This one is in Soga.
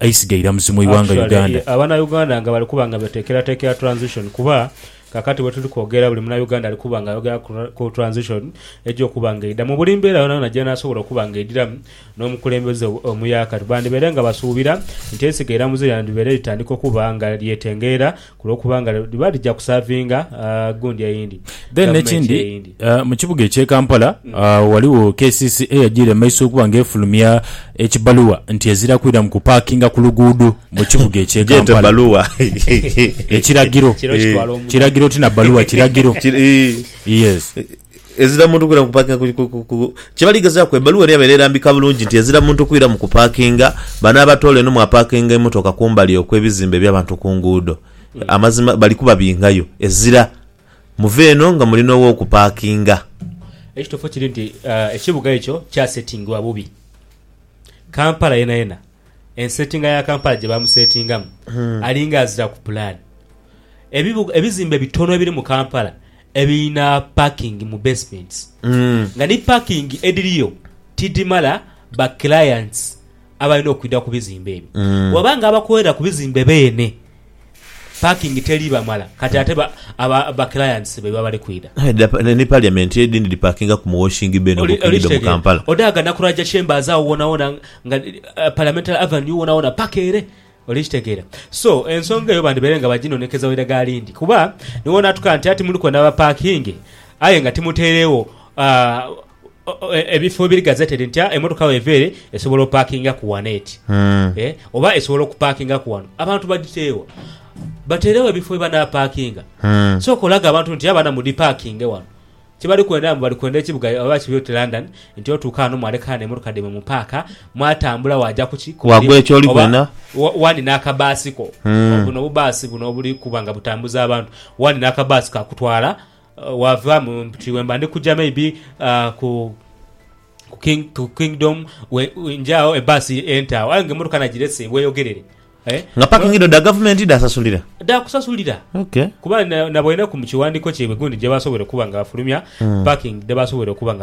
Eisiga iramuzi mu ighanga Uganda. Actually abana Uganda nga bali kuba nga betekeratekera transition kuba kakati wetuli kwogera buli muna Uganda ali kuba nga ayogera ku transition eja okuba nga eidha mu buli mbeera yonayona jenasobola okuba nga eidhiramu n'omukulembeze omuyaka. Bandibaire nga basuubira nti eisiga iramuzi lyandibaire litandika okuba nga lyetengerera Ku lw'okuba nga liba lija kusaavinga gundi eyindi Then gavumenti n'ekindi eyindi. ah, mu kibuga eky'e Kampala ah, ghaligho kcca yajiire mu maiso okuba nga efulumya ekibaluwa nti ezira kwiramu kupaakinga ku luguudo mu kibuga eky'e Gyete Kampala. baluwa. Ekiragiro. Kiro kitwala omunaku. Kiragiro ti na baluwa, kiragiro. Kiri- Yes. Ezira muntu kwira mu kupaakinga ku, ku, ku, ku. Kye bali gezaaku, ebbaluwa eno yabaire erambika bulungi nti ezira muntu kwira mu kupaakinga, bano abatoola eno mwapaakinga emotoka kumbali okw'ebizimbe eby'abantu ku nguudo. Amazima bali kubabingayo. Ezira muve eno nga mulina ow'okupaakinga. Ekituufu kiri nti ekibuga ekyo kyasetingibwa bubi. Kampala yenayena, ensetinga ya Kampala gye baamusetingamu, alinga aziraku pulaani. Ebibuga, ebizimbe bitono ebiri mu Kampala, Ebilina parking mu basements nga ni parking edhiriyo tidhimala ba clients abalina okwidha ku bizimbe ebyo. Bwaba nga abakolera ku bizimbe beene parking teri bamala kati ate ba clients baibwe abali kwidha. Aye dha ni parliament edhindhi dhi parkinga ku mu washing bay no mu kinido mu Kampala. Odhaaga na ku Raja Chambers agho wonawona nga parliamentary avenue wonawona paka ere. Oli kitegeera? So, ensonga eyo bandibaire nga baginonekeza waire ghali ndi, kuba ni w'onaatuka nti ati muluku na bapaakinge aye nga timutairegho ebifo ebiri gazettedi nti emmotoka bw'eva ere esobola opaakingaku ghano eti, oba esobola okupaakingaku ghano. Abantu badhiteeghe wa? Batairegho ebifo we banaapaakinga. Sooka olage abantu nti abana mudhipaakinge ghano. Kye bali kwenda mbu bali kwenda ekibuga oba bakibye oti London nti otuuka ghano mwaleka ghano emotoka dhaimwe mu paaka mwatambula waja ku ki? Ku Wagwa mulimu ekyoli oba kwena. wa- wandi n'akabaasi ko Mm. buno obubaasi buno obuli kuba nga butambuza abantu wandi n'akabaasi kakutwala eh, wava mu nti wemba ndi kuja maybe ah, ku ku King- ku Kingdom we- we- nje agho ebbaasi ente agho aye nga emotoka nagirese bweyogerere. Nga pakingi dho dha gavumenti dhaasasulira? Dhaakusasulira kuba naboineku mu kiwandiiko kyaibwe gundi gye baasobola okuba nga bafulumya pakingi dhe baasobola okuba nga.